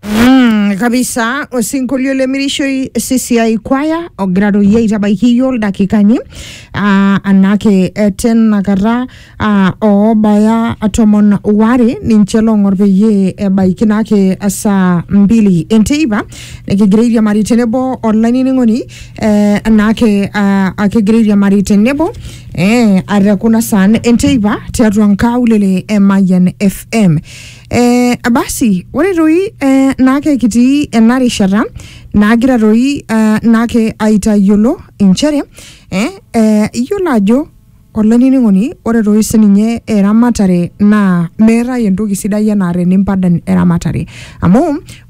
Mm, kabisa osinkolio le mirishoi sisiai kwaya ogira doi aitabaiki iyio ildakikani ah, anake eh, tenakata ah, oobaya tomon ware ninche loong'or peyie ebaiki nake saa mbili enteipa nikigira airiamari tenebo olainining'oni eh, anake ah, akigira airiamari tenebo eh, atekuna saan enteipa tiatua nkaulele e Mayian FM Eh, basi ore toi eh, naake kitii ena rishata naagira toi eh, naake aitayiolo inchere eh, eh, iyiolo ajo olainining'oni ore toi sininye eramatare naa meetae entoki sidai enaa tenimpadan eramatare amu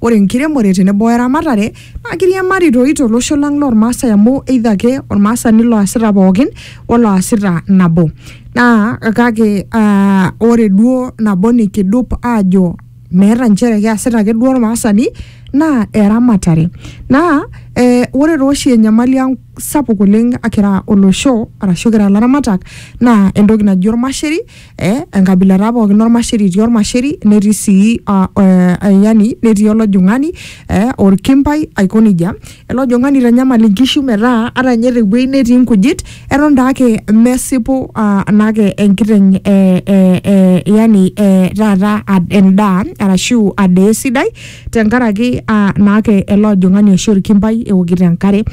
ore enkiremore tenebo eramatare naa kiriamari toi tolosho lang lormaasai amu either ake ormaasani loasita pookin oloasita nabo naa kake uh, ore duo nabo nikidup aajo meeta nchere keasita ake duo ormaasani naa eramatare naa eh, ore tooshi enyamali ang sapuk oleng akira olosho arashu kira ilaramatak naa entoki naji ormasheri eh, enkabila taa pookin ormasheri etii ormasheri netii sii ah, eh, eh, yani netii olojung'ani eh, orkimpai aiko nejia ele ojung'ani eitanyamal inkishu metaa ata ninye tewueji netii inkujit eton taake mesipu ah, naake enkiteng eh, eh, eh, yani eh, taata ad- endaa arashu adaa esidai tenkaraki ah, naake ele ojung'ani oshi orkimpai eokito enkare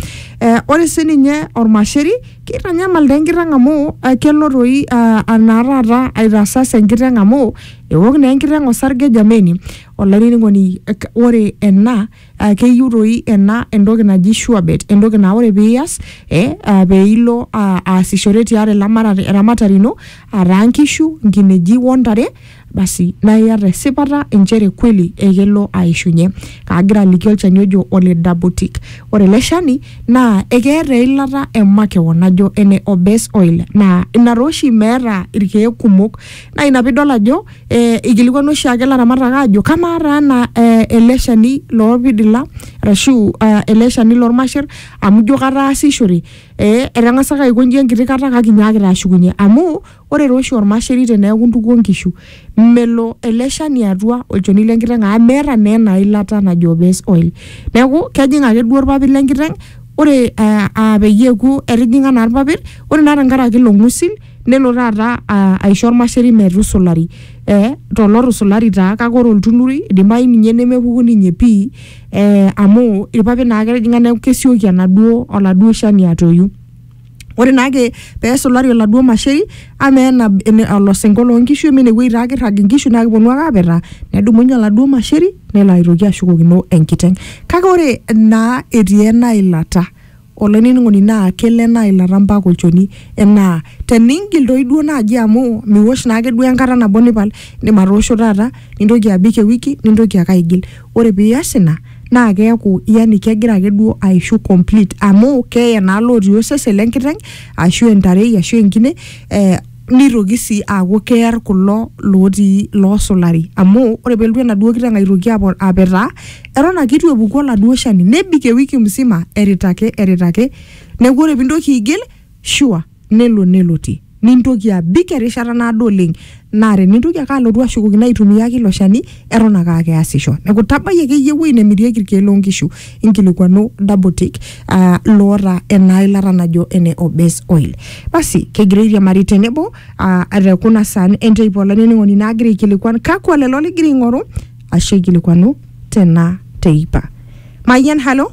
eh, ore sininye ormasheri Keitanyamal taa enkiteng amu eh, kelo toi ah, anaa taata aitasas enkiteng amu ewok naa enkiteng osarge jameni olainining'oni eh, k- ore ena ah, keyieu toi ena entoki naji sure bet entoki naa ore piiyas eh, ah, peilo ah, aasishore tiatua elamata- eramatare ino ataa nkishu nkineji wontare Basi, naa iata esipata inchere kweli ekelo aishunye. Kaagira aliki olchani ojo ole Dabotic. Ore ele shani naa ekeeta eilata e makewon najo ene Obes oil naa ina taa oshi meeta irkeek kumok. Naa ina piidol ajo eh eikilikuanu oshiake ilaramatak aajo kamaa taa ena eh ele shani loolpidila arashu ah ele shani lolmasher amu ijo kataasishore eh etang'asaka aiko inji enkiti kata kake inyaakita ashukunye amu Ore taa oshi olmasheri teneaku intukuo nkishu, melo ele shani atua olchoni le nkiteng amu meeta naa ena ilata najo base oil. Neaku, kejing ake duo ilpapit le nkiteng, ore aa peyie eaku etijing'a naa ilpapit, ore naa tenkaraki ilo ng'usil nelo taata aisho olmasheri metusulari to lotusulari taa kake ore oltunurui eidimayu ninye nemepuku ninye pii amu ilpapit naa ake etijing'a neaku kesioki oladuo shani atoyu. ore naake pesulari oladuo masheri ama ena ene- olosinko loonkishu ama enewueji taa kirrag inkishu naa kiponu ake apetaa nedumunye oladuo masheri nelo aitoki ashukokino enkiteng kake ore naa etii ena ilata olainining'oni naa kelo ena ilata mpaka olchoni enaa teningil toi duo naaji amu miwosh naake duo enkata nabo nipal indim atoosho taata nintoki abik ewiki nintoki ake aigil. Ore pias ina naa keaku yani kegira ake duo aishu complete amu keye naa lotii osesen lenkiteng ashu entarei ashu enkine eh, nitoki sii aaku kear kulo lotii loosulari amu ore pelotu enaduo kiteng aitoki apo apetaa eton ake itu epuku oladuo shani nebik ewiki msima erita ake erita ake neku ore pintoki aigil sure. nelo nelotie nintoki abik erishata naado oleng naa tenintoki ake alotu ashukokino aitumia ake ilo shani eton ake aa keasisho neeku tabai akeyie ewuei nemirieki irkeek loonkishu inkilikuanu Dabotic aa loota ena ilata najo ene Obes oil basi kegira airiamari tenebo aa te kuna saan enteipa olainining'oni naagira aikilikuan kakwa lelo ligira aing'oru ashu aikilikuanu tena teipa Mayian halo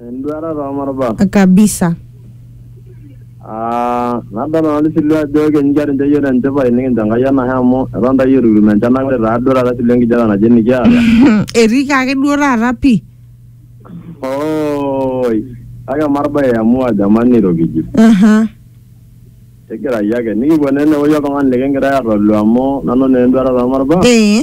Enduata too marubat. Kabisa. Aa nadol nanu tisilu ajo keninche ninche iyiok tenchipai nikincho Enkai enashe amu eton taa iyiok itu kitum enchan kake ore taa duo taata tisilu enkijape naje nikiata. Etii kaa ake duo taata pii. Ooi. Kake marba iamua jamani iro kijito. Aha. Tigirayu ake. Nikipuo naa ene wuei oltung'ani likigira aitolu amu nanu naa enduata too marubat. Ee.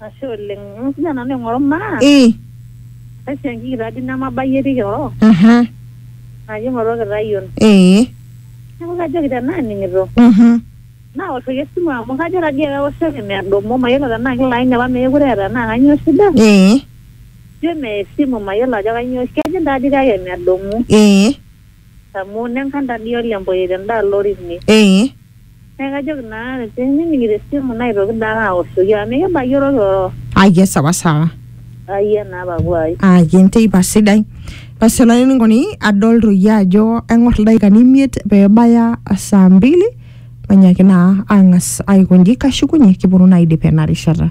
Ashe oleng. Eng'as ninye nanu aing'oru maa. Ii. Esiankiki taa dii nemabayie etii Kioro. Aha. Naji aing'oru Orkitayion. Ee. Neeku kajoki tenaa ening'ito. Mhm. Naoshoki esimu amu kajo taa dii ake aoshoki medumu. Mayiolo tenaa kilo aini apa meekure eeta enaa kanyoo shida. Ee. Ijo meya esimu mayiolo ajo kanyoo. Kejing taa dii kake medumu. Ee. Amu nenkan taa dii ole Mboye tenda alo ore ine. Ee. Neeku kajoki naa tenining'ito esimu naitoki daa ake aoshoki amu mikibayie orororo. Aya sawa sawa. Ayia naa papuai. Aya enteipa sidai. Basi olainining'oni adol toi ajo aing'or ildaikani imiet peebaya saa mbili mainyaaki naa aang'as aiko nji kashukunye kiponu naa aidip ena rishata.